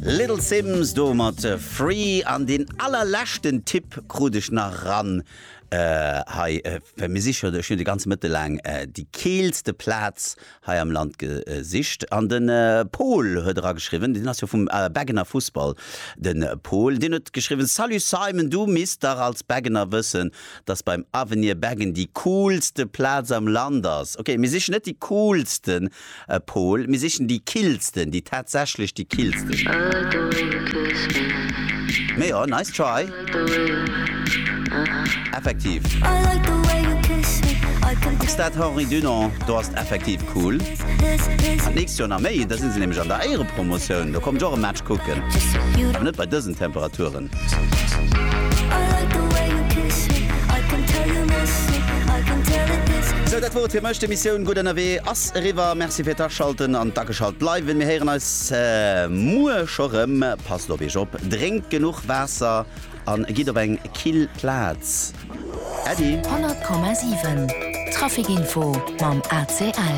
Little Simz do mat Free an deen allerleschten Tipp krut ech nach ran hei, well mir siche, ech hunn de ganze Mëtte laang déi keelste Plaz hei am Land gesicht an de Pol huet era geschriwwen, deen ass jo vum Beggener Fussball de Pol, deen huet geschriwwen, Salut Simon, du misst dach als Beggener wëssen, dass beim Avenir Beggen déi coolste Plaz am Land ass. Ok, mir sichen net déi coolsten. E Pol, mir sichen déi killsten, déi tatsächlech déi killsten. Mee jo, nice try. Effektiv. Stade Henri Dunant, do ass et effektiv cool. An d'nächst Joer nach méi, da si se nämlech an der Éierepromotioun. Do kommt ech och e Match kucken. Mä net bei dësen Temperaturen. Sou, dat wor et fir mech. D'Emissioun Gutt Ënnerwee ass eriwwer. Merci fir d'Aschalten an d'Ageschalt bleiwen. Mir héieren eis muer scho rëm. Passt op Iech op, drénkt genuch Waasser a gitt op eng kill Plaz. Äddi. 100,7 Trafic-Info mam ACL.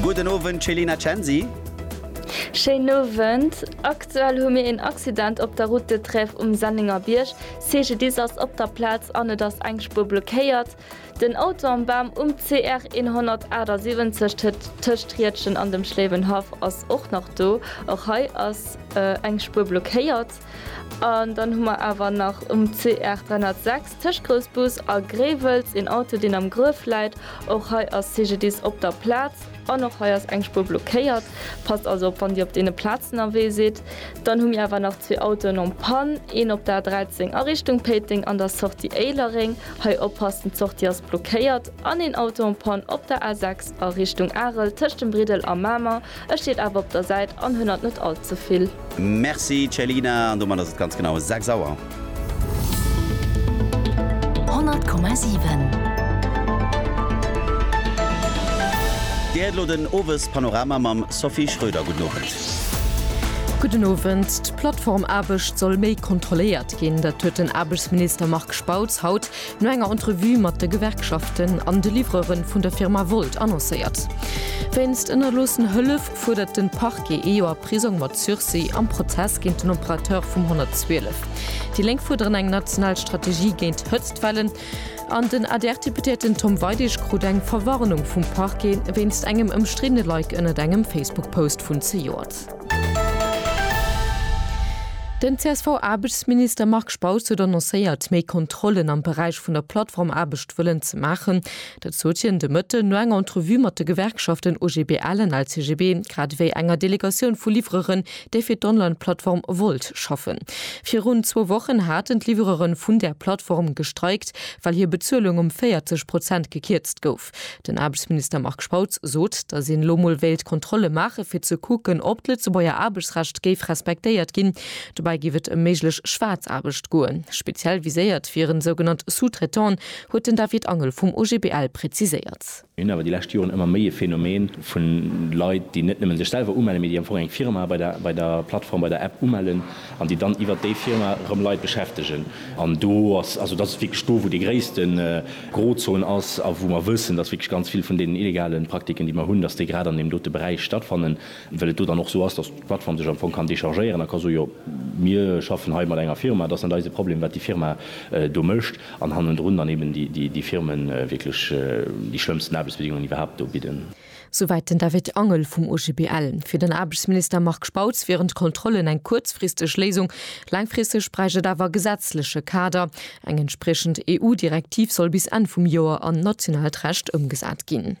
Gudden Owend Céline a Censi. Schéinen Owend. Aktuell hu mir een Accident op der Route de Trèves um Sennengerbierg. CGDIS ass op der Plaz an et ass eng Spuer blockéiert. Den Auto am Bam um CR 178 tëtt tëscht Riedgen an dem Schléiwenhaff ass och nach do. Och hei ass eng Spuer blockéiert. An dann hu mer awer nach um CR 306 tëscht Groussbus a Gréiwels een Auto deen am Gruef läit. Och hei ass CGDIS op der Plaz. An och hei ass eng Spuer blockéiert. Passt also op wann dir op deene Plazen erwee sidd. Dann hu mir awer nach zwee Autoen en panne, een op der A13 a Richtung Péiteng an der Sortie Éilereng, hei oppassen d'Sortie ass blockéiert, an een Auto en panne op der A6 a Richtung Arel tëscht dem Briddel a Mamer. Ech steet awer op der Säit an hënnert net all ze vill. Merci Ceylinah, an domat ass et ganz genau 6 Auer. Dir héiert elo den Owespanorama mam Sophie Schröder. Gudden Owend. Gudden Owend. D'Plattformaarbecht soll méi kontrolléiert ginn. Dat huet den Aarbechtsminister Marc Spautz haut no enger Entrevue mat de Gewerkschaften an de Livreuren vun der Firma Wolt annoncéiert. Wéinst ënnerloossen Hëllef, fuerdert de Parquet ee Joer Prisong mat Sursis am Prozess géint den Operateur vum 112. Déi Lénk fuerderen eng national Strategie géint Hëtztwellen an den ADR-Deputéierten Tom Weidig krut eng Verwarnung vum Parquet wéinst engem ëmstriddene Like ënnert engem Facebook-Post vun zejoert. Den CSV-Aarbechtsminister Marc Spautz huet annoncéiert, méi Kontrollen am Beräich vun der Plattformaarbecht wëllen ze maachen. Dat sot hien de Mëtten no enger Entrevue mat de Gewerkschaften OGBL an LCGB, grad ewéi enger Delegatioun vu Livreuren, déi fir d'Online-Plattform Wolt schaffen. Virun zwou Wochen haten d'Livreuren vun där Plattform gestreikt, well hir Bezuelung ëm 40 Prozent gekierzt gouf. Den Aarbechtsminister Marc Spautz sot, datt een elo mol wéilt Kontrolle maachen, fir ze kucken, ob d'Lëtzebuerger Aarbechtsrecht géif respektéiert ginn. Dobäi géif et ëm méiglech Schwaarzaarbecht goen. Speziell viséiert wieren sougenannt Sous-traitants, huet den David Angel vum OGBL präziséiert. Mir hunn awer déi lescht Joren ëmmer méi e Phänomen vu Leit, déi net nëmmen sech selwer umellen, mee déi am Fong eng Firma bei der Plattform, bei der App umellen an déi dann iwwert déi Firma erëm Leit beschäftegen. An do ass, also dat ass wierklech do, wou déi gréisste Grozon ass a wou mer wëssen, dass wierklech ganz vill vun deenen illegale Praktiken, déi mer hunn, dass déi grad an deem dote Beräich stattfannen, well et do dann och esou ass, dass d'Plattform sech am Fong kann dechargéieren a ka soen, jo mir schaffen hei mat enger Firma, et ass net eise Problem, wat déi Firma do mécht. An hannendrun dann eben déi Firmen wierklech déi schlëmmsten Aarbechtsbedingungen iwwerhaapt do bidden. Souwäit den David Angel vum OGBL. Fir den Aarbechtsminister Marc Spautz wieren d'Kontrollen eng kuerzfristeg Léisung. Laangfristeg bräicht et awer e gesetzleche Kader. Eng entspriechend EU-Direktiv soll bis Enn vum Joer an nationaalt Recht ëmgesat ginn.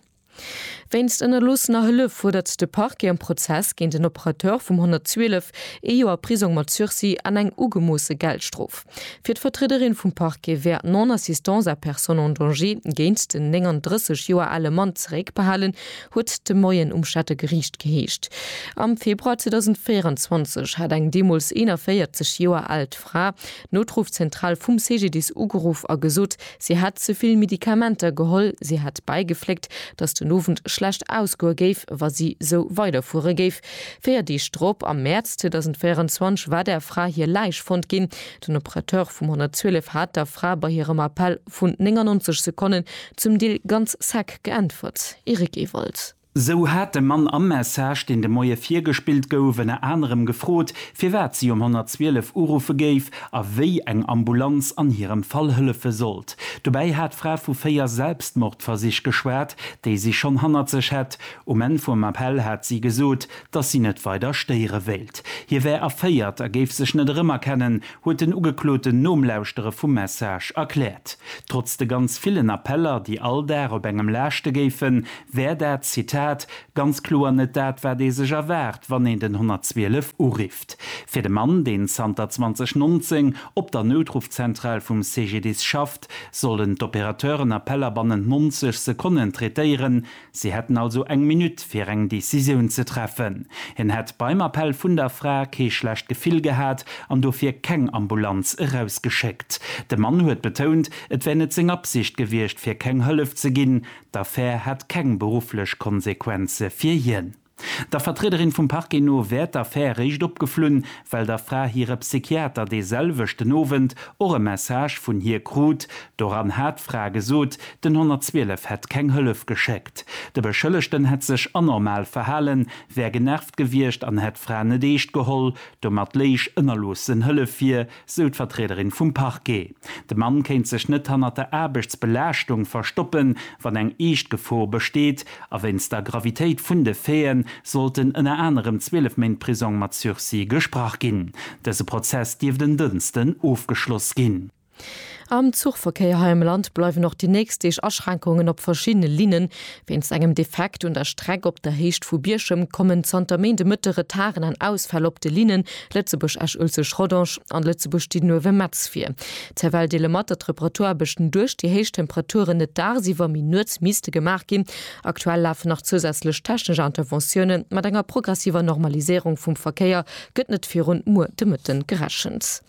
Wéinst ënnerloossener Hëllef fuerdert de Parquet am Prozess géint en Operateur vum 112 ee Joer Prisong mat Sursis an eng ugemoosse Geldstrof. Fir d'Vertriederin vum Parquet wär d'Non-assistance à personne en danger géint den 39 Joer ale Mann zeréckbehalen, huet et de Moien um Stadter Geriicht geheescht. Am Februar 2024 hat eng deemools 41 Joer aalt Fra d'Notrufzentral vum CGDIS ugeruff a gesot, Si hätt ze vill Medikamenter geholl. Si hätt bäigefléckt, datt den Owend schlecht ausgoe géif, wa si sou weiderfuere géif. Véier Deeg drop, am Mäerz 2024, war der Fra hir Läich fonnt ginn. Den Operateur vum 112 hat der Fra bei hirem Appell vun 99 Sekonnen zum Deel ganz sec geäntwert, Eric Ewald. Sou hat de Mann am Message, deen de Moie virgespillt gouf, ënner anerem gefrot, firwat si um 112 uruffe géif a wéi eng Ambulanz an hirem Fall hëllefe sollt. Dobäi hat d'Fra vu véier Selbstmordversich geschwat, déi si schonn hannert sech hätt. Um Enn vum Appell hat si gesot, dass si net weider stéiere wéilt. Hie wär erféiert a géif sech net erëmerkennen, huet den Ugekloten nom Lauschtere vum Message erkläert. Trotz de ganz villen Appeller, déi all Dag op engem laaschte géifen, wär dat Zitat ganz kloer net dat, wat ee sech erwaart, wann een den 112 urifft. Fir de Mann, deen zanter 2019 op der Noutruffzentral vum CGDIS schafft, sollen d'Opérateuren Appeller bannent 90 Sekonnen traitéieren. Si hätten also eng Minutt, fir eng Decisioun ze treffen. Hien hätt beim Appell vun der Fra kee schlecht Gefill gehat an dofir keng Ambulanz erausgeschéckt. De Mann huet betount, et wär net seng Absicht gewiescht, fir keng Hëllef ze ginn. D'Affär hätt keng berufflech Konsequenze fir hien. Der Vertriederin vum Parquet no wär d'Affär eréischt opgeflunn, well der Fra hire Psychiater dee selwechten Owend och e Message vun hir krut. Doran hat d'Fra gesot, den 112 hätt keng Hëllef geschéckt. De Beschëllegten hätt sech anormal verhalen, wär genervt gewiescht an hätt d'Fra net eescht geholl. Domat léich ënnerloossen Hëllef vir, sou d'Vertriederin vum Parquet. De Mann kéint sech net hannert der Aarbechtsbelaaschtung verstoppen, wann eng eescht Gefor besteet. A wéinst der Gravitéit vun de Faiten sollten ënner anerem 12 Méint Prisong mat Sursis gesprach ginn. Dëse Prozess dierft en Dënsten ofgeschloss ginn. Am Zuchverkéier hei am Land bleiwen och déi nächst Deeg Aschränkungen op verschiddene Linnen. Wéinst engem Defekt un der Streck op der Héicht vu Bierchem kommen zanter Méinde Mëtte Retarden an Ausfäll op de Linnen Lëtzebuerg-Esch-Uelzecht-Rodange an Lëtzebuerg-Didenhoven-Metz vir. D'Cervelle deele mat, datt d'Reparatur-Aarbechten duerch déi héich Temperaturen net daagsiwwer, mee nuets misste gemaach ginn. Aktuell lafen nach zousätzlech technesch Interventiounen. Mat enger progressiver Normaliséierung vum Verkéier gëtt net virun muer de Mëtten gerechent.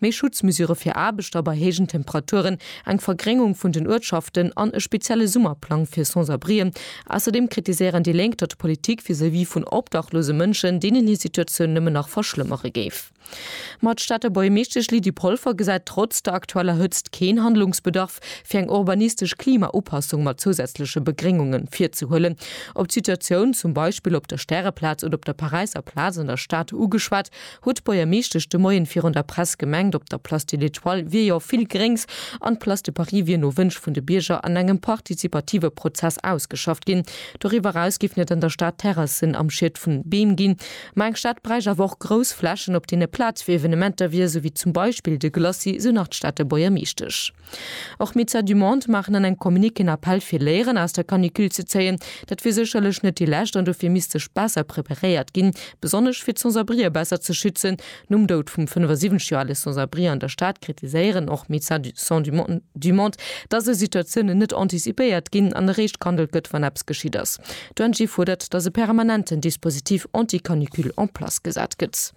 Méi Schutzmesure fir Aarbechter bei héijen Temperaturen, eng Vergréngung vun den Uertschaften an e spezielle Summerplang fir Sans-abrien. Ausserdeem kritiséieren déi Lénk, datt d'Politik vis-à-vis vun obdachlose Mënschen deenen hir Situatioun nëmmen nach verschlëmmere géif. Ma d'Stater Buergermeeschtesch Lydie Polfer gesäit trotz der aktueller Hëtzt keen Handlungsbedarf, fir eng urbanistesch Klimaupassung mat zousätzleche Begréngunge virzehuelen. Op d'Situatioun zum Beispill op der Stäreplaz oder op der Paräisser Plaz an der Stad ugeschwat, Huet d'Buergermeeschtesch de Moien virun der Press gemengt, op der Place de l'Etoile wier jo vill Gréngs an d'Place de Paris wier no Wënsch vun de Bierger an engem partizipative Prozess ausgeschafft ginn. Doriwwer eraus géif net an der Stad Terrassen am Schied vun Beem ginn, ma eng Stad bräicht awer och grouss Flächen op deene Plaz fir Evenementer wier, sou wéi zum Beispill de Glacis, sou nach d'Stater Buergermeeschtesch. Och Médecins du Monde maachen an engem Communiqué en Appell fir Léieren aus der Canicule ze zéien. Dat wier sécherlech net déi lescht an dofir misst sech besser preparéiert ginn, besonnesch fir d'Sans-abrië besser ze schützen. Nom Doud vum 75 Joer ale Sans-abri an der Stad kritiséieren och Médecins du Monde, datt esou Situatiounen net anticipéiert ginn an eréischt gehandelt gëtt, wann eppes geschitt ass. D'ONG fuerdert, datt e permanenten Dispositif anti-canicule en place gesat gëtt.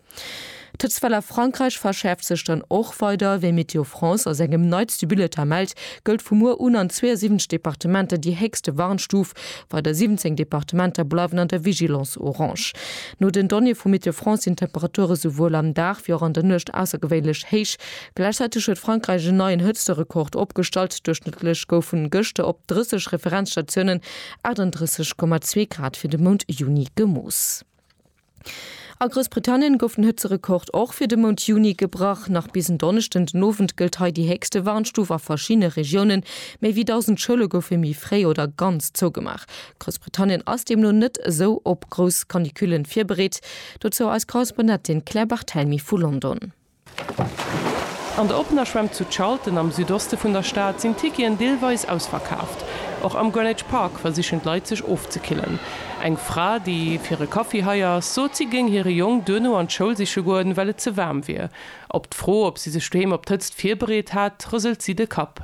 D'Hëtztwell a Frankräich verschäerft sech dann och weider. Wéi Météo France a sengem neitste Bulletin mellt, gëllt vu muer un an 72 Departementer déi héchste Warnstuf. Weider 17 Departementer bleiwen an der Vigilance orange. No den Donnéeë vu Météo France sinn d'Temperature souwuel am Dag wéi och an der Nuecht aussergewéinlech héich. Gläichzäiteg huet Frankräich en neien Hëtzterekord opgestallt, Duerchschnëttlech goufen gëschter op 30 Referenzstatiounen 38,2 Grad fir de Mount Juni gemooss. A Groussbritannien gouf den Hëtzerekord och fir de Mount Juni gebrach. Nach bis en Donneschden den Owend gëllt hei déi héchste Warnstuf a verschiddene Regiounen. Méi wéi 1.000 Schoule goufe méi fréi oder ganz zougemaach. Groussbritannien ass deemno net esou op grouss Canicule virbereet. Dozou eis Korrespondentin Claire Barthelmy vu London. An der oppener Schwämm zu Charlton am Südoste vun der Stad sinn d'Ticketen deelweis ausverkaaft. Och am Greenwich Park versichen d'Leit sech ofzekillen. Eng Fra, déi fir e Kaffi hei ass, sot si géing hire Jong duerno an d'Schoul siche goen, well et ze waarm wier. Op d'Fro, ob si sech doheem op d'Hëtzt virbereet hat, rëselt si de Kapp.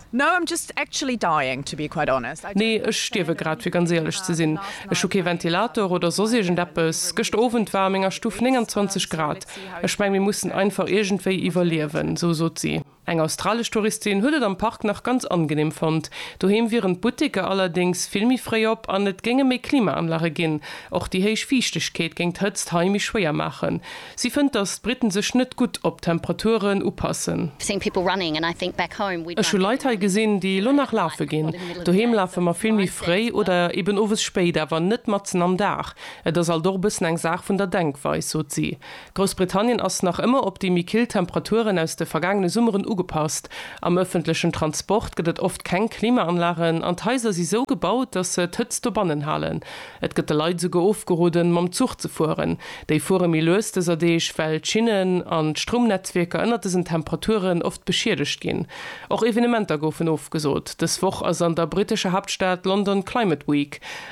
Nee, ech stierwe grad, fir ganz éierlech ze sinn. Ech hu kee Ventilator oder soss iergend eppes. Gëschter Owend war a menger Stuff 29 Grad. Ech meng, mir mussen einfach iergendwéi iwwerliewen, esou sot si. Eng australesch Touristin huet et am Park nach ganz angeneem fonnt. Doheem wieren d'Butteker allerdéngs vill méi fréi op an et géinge méi Klimaanlage ginn. Och déi héich Fiichtegkeet géing d'Hëtzt hei méi schwéier maachen. Si fënnt, datt d'Britten sech net gutt op d'Temperaturen upassen. Ech hu Leit hei gesinn, déi elo nach lafe ginn. Doheem lafe mer vill méi fréi oder eben owes spéit, awer net matzen am Dag. Et ass alt och e bëssen eng Saach vun der Denkweis, sot si. Groussbritannien ass nach ëmmer op déi méi kill Temperaturen aus de vergaangene Summeren ugepasst. Am ëffentlechen Transport gëtt et oft keng Klimaanlagen an d'Haiser si sou gebaut, datt se d'Hëtzt dobannen halen. Et gëtt de Leit esouguer ofgeroden, mam Zuch ze fueren. Déi fuere méi lues dëser Deeg, well d'Schinnen an d'Stroumnetzwierker ënnert dësen Temperaturen oft beschiedegt ginn. Och Evenementer goufen ofgesot. Dës Woch ass an der brittescher Haaptstad London Climate Week.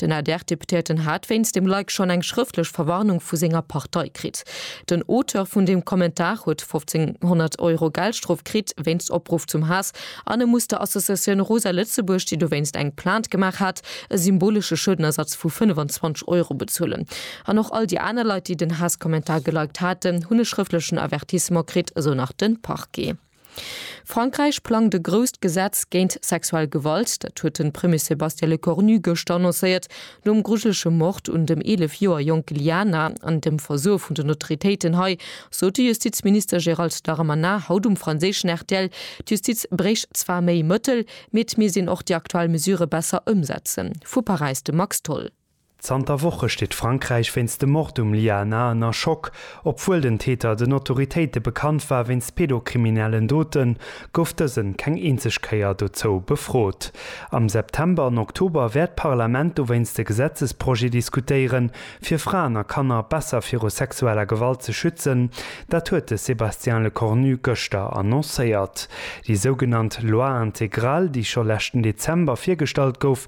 Den ADR-Deputéierten hat wéinst dem Like schonn eng schrëftlech Verwarnung vu senger Partei kritt. Den Auteur vun deem Kommentar huet 1500 Euro Geldstrof kritt wéinst Opruff zum Haass an e muss der Associatioun Rosa Lëtzebuerg, déi dowéinst eng Plainte gemaach hat, e symbolesche Schuedenersatz vu 25 Euro bezuelen. An och all déi aner Leit, déi den Haasskommentar geliked haten, hunn e schrëftlechen Avertissement kritt, esou nach de Parquet. Frankräich plangt e grousst Gesetz géint sexuell Gewalt. Dat huet de Premier Sébastien Lecornu gëschter annoncéiert, nom grujelege Mord un dem 11 Joer jonke Liana an dem Versoe vun den Autoritéiten hei, sot de Justizminister Gérald Darmanin haut um franséischen rtl. D'Justiz bréicht zwar méi Mëttel, mee et misst een och déi aktuell Mesure besser ëmsetzen. Vu Paräis de Max Tholl. Zanter Woche steet Frankräich wéinst dem Mord um Lia Na ënner Schock. Obwuel den Täter den Autoritéite bekannt war wéinst pedokriminellen Doten, gouf dësen keng eenzeg Kéier dozou befrot. Am September an Oktober wäert d'Parlament dowéinst e Gesetzesprojet diskutéieren, fir Fraen a Kanner besser viru sexueller Gewalt ze schützen. Dat huet de Sébastien Lecornu gëschter annoncéiert. Déi sougenannt Loi intégrale, déi scho leschten Dezember virgestallt gouf,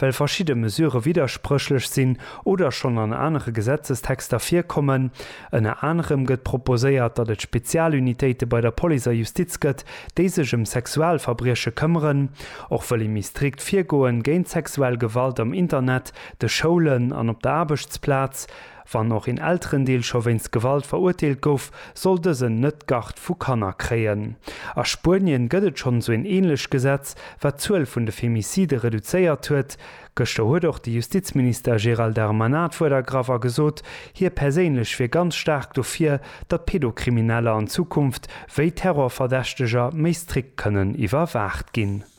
Well verschidde Mesure widderspréchlech sinn oder schonn an anere Gesetzestexter virkommen. Ënner anerem gëtt proposéiert, datt et Spezialunitéite bei der Police a Justiz gëtt, déi sech ëm Sexualverbrieche këmmeren. Och wëll ee méi strikt virgoen géint sexuell Gewalt am Internet, de Schoulen an op der Aarbechtsplaz. Wann och een Elterendeel scho wéinst Gewalt verurteelt gouf, soll dësen net d'Garde vu Kanner kréien. A Spuenien gëtt et schonn esou een änlech Gesetz, wat d'Zuel vun de Femicide reduzéiert huet. Gëschter huet och de Justizminister Gérald Darmanin d'Wuert ergraff a gesot, hie perséinlech wier ganz staark dofir, datt Pedokrimineller an Zukunft wéi Terrorverdächteger méi strikt kënnen iwwerwaacht ginn.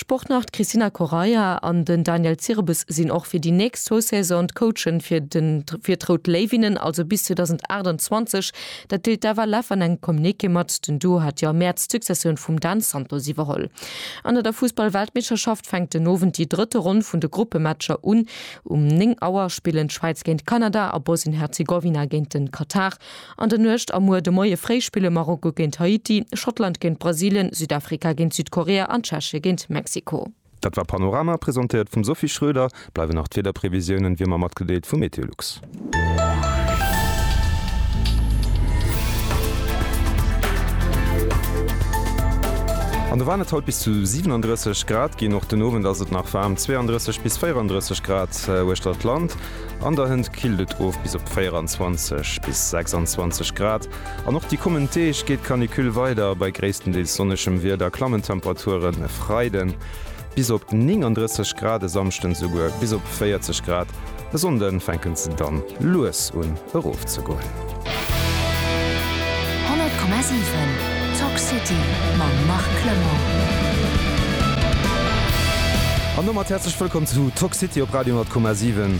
Sportnarr d'Cristina Correia an den Daniel Zirebes sinn och fir déi nächst zwou Saison d'Coachen fir fir d'Rout Léiwinnen, also bis 2028. Dat deelt d'Eva Leff an engem Communiqué mat. Den Duo hat Jo am Mäerz d'Successioun vum Dan Santos iwwerholl. An der der Fussball-Weltmeeschterschaft fänkt den Owend déi drëtte Ronn vun de Gruppematcher un. Um 9 Auer spillen d'Schwäiz géint Kanada a Bosnien-Herzegowina géint de Katar. An der Nuecht a muer de Moie fréi spille Marokko géint Haiti, Schottland géint Brasilien, Südafrika géint Südkorea an Tschechien géint Mexiko. Dat war Panorama, presentéiert vum Sophie Schroeder. Bleiwen nach d'Wiederprevisiounen wéi ëmmer matgedeelt vu Meteolux. An do waren et haut bis zu 37 Grad ginn. Och den Owend ass et nach waarm, 32 bis 34 Grad uechter d'Land. An der Hënt killt et of bis op 24 bis 26 Grad an och déi kommend Deeg geet d'Canicule weider. Bei gréisstendeels sonnegem Wieder klammen d'Temperaturen e Freiden bis op 39 Grad, e Samschden esouguer bis op 40 Grad. E Sonnde fänken se dann lues un erofzegoen. 100,7 Talk City mam Marc Clement. An domat häerzlech wëllkomm zu Talk City op Radio 100,7.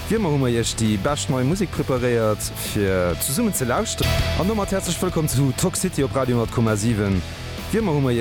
Wéi ëmmer hu mer iech déi bescht nei Musek preparéiert fir zesummen ze lauschteren. An domat häerzlech wëllkomm zu Talk City op Radio 100,7. Wéi ëmmer hu mer.